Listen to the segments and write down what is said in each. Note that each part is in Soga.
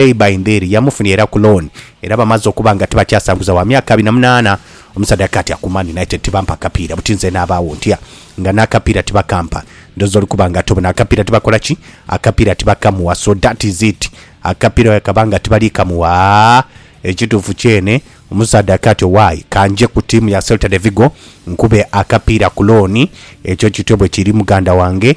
Ray Bainderi yamufunha era ku looni era bamaze okuba nga tibakyasanguza wa myaka abiri na munaana, omusadha kati aku Man United tibampa kapiira buti nze naabaagho ntya nga n'akapiira tibakampa, ndhoozi oli kuba nga ate obona akapiira tibakola ki? Akapiira tibakamuwa so that is it, akapiira bwe kaba nga tibali kamuwa ekituufu kyene omusadha kati owaaye ka nje ku tiimu ya Celta de Vigo nkube akapiira ku looni, ekyo kityo bwe kiri muganda wange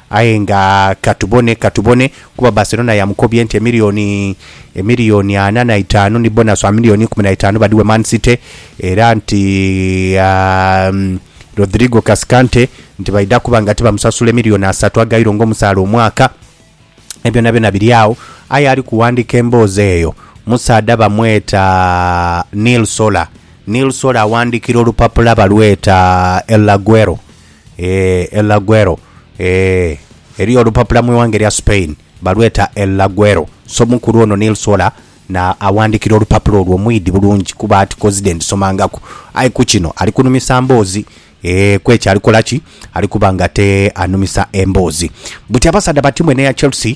Aye nga ka tubone, ka tubone, kuba Barcelona yamukobya ente emiliyoni, emiliyoni ana na itaanu ni bonasi wa miliyoni ikumi na itaanu badhi we Man City era nti Rodrigo Cascante nti baidha kuba nga tibamusasula emiliyoni asatu aga Euro ng'omusaala omwaka. Ebyo byonabyona biri agho aye ali kuwandika emboozi eyo musaadha bamweta Neil Solar. Neil Solar awandikira olupapula balweta El Aguero. Eeh El Aguero eeh eriyo olupapula mwighanga erya Spain balweta El Aguero so omukulu ono Neil Solar na awandikira olupapula olwo mwidhi bulungi kuba articles dhe ndhisomangaku aye kukino ali kunumisa mboozi eeh kwekyo ali kolaki ali kuba nga ate anumisa emboozi buti abasaadha batimu eno eya Chelsea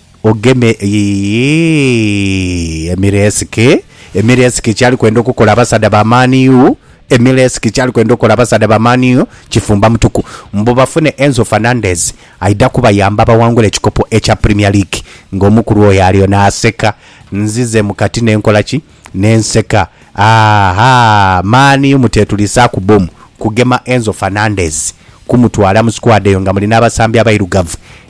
Ogeme yii Emile Esiki Emile Esiki kyali kwenda okukola abasaadha ba Man U Emile Esiki kyali kwenda okukola abasaadha ba Man U kifumba mutuku mbu bafune Enzo Fernandez aidha kubayamba baghangule ekikopo ekya Premier League nga omukulu oyo ali yo naaseka nzize mu kati ne nkola ki? Ne nseka Aahaa Man U muteetulisaaku bbomu kugema Enzo Fernandez kumutwala mu squad eyo nga muli n'abasambi abairugavu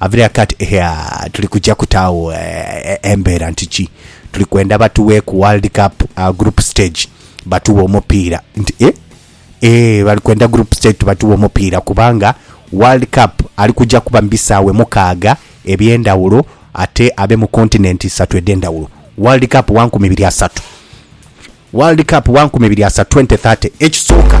Avire akati, Hea, tuli kuja kutaagho embeera nti ki? Tuli kwenda batuwe ku World Cup group stage batuwe omupiira. Nti, Eh? Ee, bali kwenda group stage tubatuwe omupiira kubanga World Cup ali kuja kuba mu bisaawe mukaaga eby'endhawulo ate abe mu kontinenti isatu edh'endhawulo. World Cup wa nkumi ibiri asatu. World Cup wa nkumi ibiri asatu, twenty thirty. Ekisooka.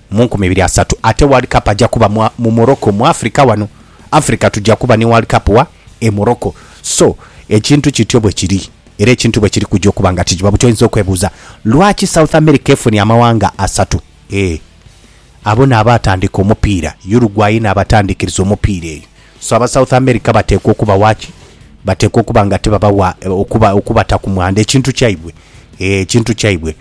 mu nkumi ibiri asatu ate World Cup aja kuba mu mu Morocco mu Africa wano Africa tuja kuba ni World Cup wa e Morocco so ekintu kityo bwe kiri era ekintu bwe kiri kuja okuba nga tikiba buti oyinza okwebuuza lwaki South America efunye amawanga asatu ee abo naabo atandika omupiira Uruguay naabo atandikiriza omupiira eyo So aba South America bateekwa okuba wa ki? Bateekwa okuba nga tibabawa okuba okubata ku mwanda ekintu kyaibwe, ee, ekintu kyaibwe.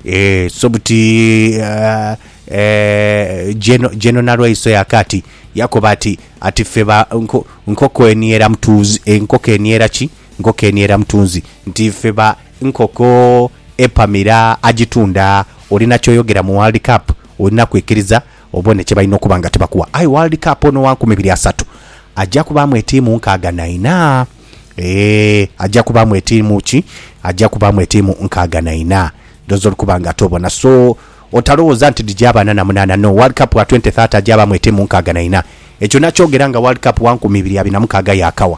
Ee, so buti ah, eh, Geno- Geno nalwaiso yaka ati yakoba ati ati ffe ba nko- nkoko eniera mutunzi eh, nkoko eniera ki? Nkoko eniera mutunzi nti ffe ba nkoko epamira agitunda. Olina kyoyogera mu World Cup? Olina kwikiriza? Obone kye balina okuba nga tibakuwa. Aye World Cup ono wa nkumi ibiri asatu aja kubaamu etiimu nkaaga na ina. Eeh, aja kubaamu etiimu ki? Aja kubaamu etiimu nkaaga na ina. Ndhooza oli kuba nga tobona. So, otalowooza nti dhija aba ana na munaana. No, World Cup wa twenti thirty aja baamu etiimu nkaaga na ina. Ekyo nakyogera nga World Cup wa nkumi ibiri abiri na mukaaga yaakawa.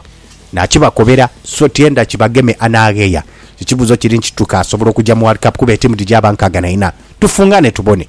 Nakibakobera. So, tyenda kibageme anaagheya. Ekibuuzo kiri nti, Tukaasobola okuja mu World Cup kuba etiimu dhija aba nkaaga na ina? Tufungane tubone.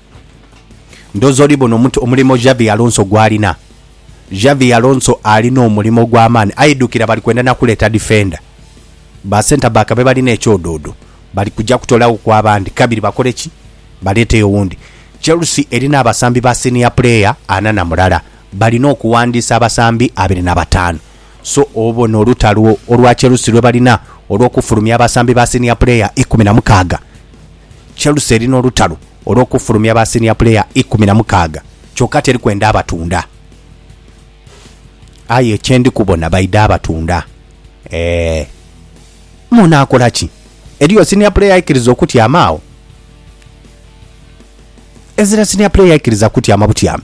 Ndhooza oli bona omulimo Xabi Alonso gw'alina. Xabi Alonso ali n'omulimo ogw'amaani aye idhukira bali kwenda na kuleeta difenda. Ba centreback be balina ekyodoodo bali kuja kutoolagho ku abandi kabiri bakole ki? Baleeteyo owundi. Chelsea erina abasambi ba senior player ana na mulala. Balina okuwandiisa abasambi abiri na bataanu. So obone olutalo olwa Chelsea lwe balina olw'okufulumya abasambi ba siniya puleya ikumi na mukaaga. Chelsea erina olutalo olw'okufulumya ba siniya puleya ikumi na mukaaga kyoka teri kwenda abatunda. Aye kye ndi kubona baidha abatunda. Eeh! Aye onaakola ki? Eriyo siniya puleya aikiriza okutyama agho? Ezira siniya puleya aikiriza kutyama butyami.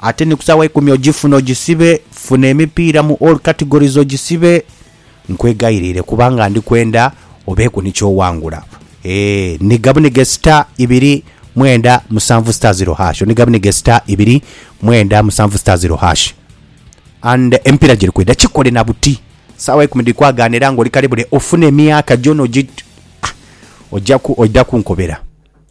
Ate ni ku saawa ikumi ogifune ogisibe, funa emipiira mu all categories ogisibe. Nkwegayiriire kubanga ndi kwenda obeeku ni ky'owangula. Eeh, ni gabunige star ibiri mwenda musanvu star zero hash, ni gabunige star ibiri mwenda musanvu star zero hash. And emipiira giri kwidha, kikole na buti. Saawa ikumi dhi kwagaana era nga oli kalebule ofuna emyaka gyona ogi, ah, oja ku, oidha kunkobera.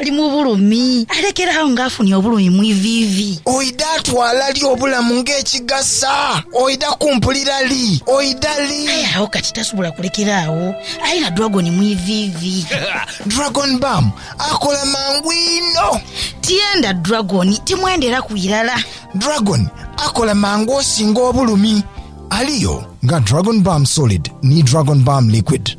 Ali mu bulumi, alekere agho ng'afunye obulumi mu iviivi. Oidha twala li obulamu ng'ekigasa? Oidha kumpulira li? Oidha li? Aye agho kati tasobola kulekera agho, ali na dragon mu iviivi. Dragon Bam akola mangu inho. Tienda dragon, timwenderaku irala. Dragon akola mangu osinga obulumi. Aliyo nga Dragon Bam Solid ni Dragon Bam Liquid.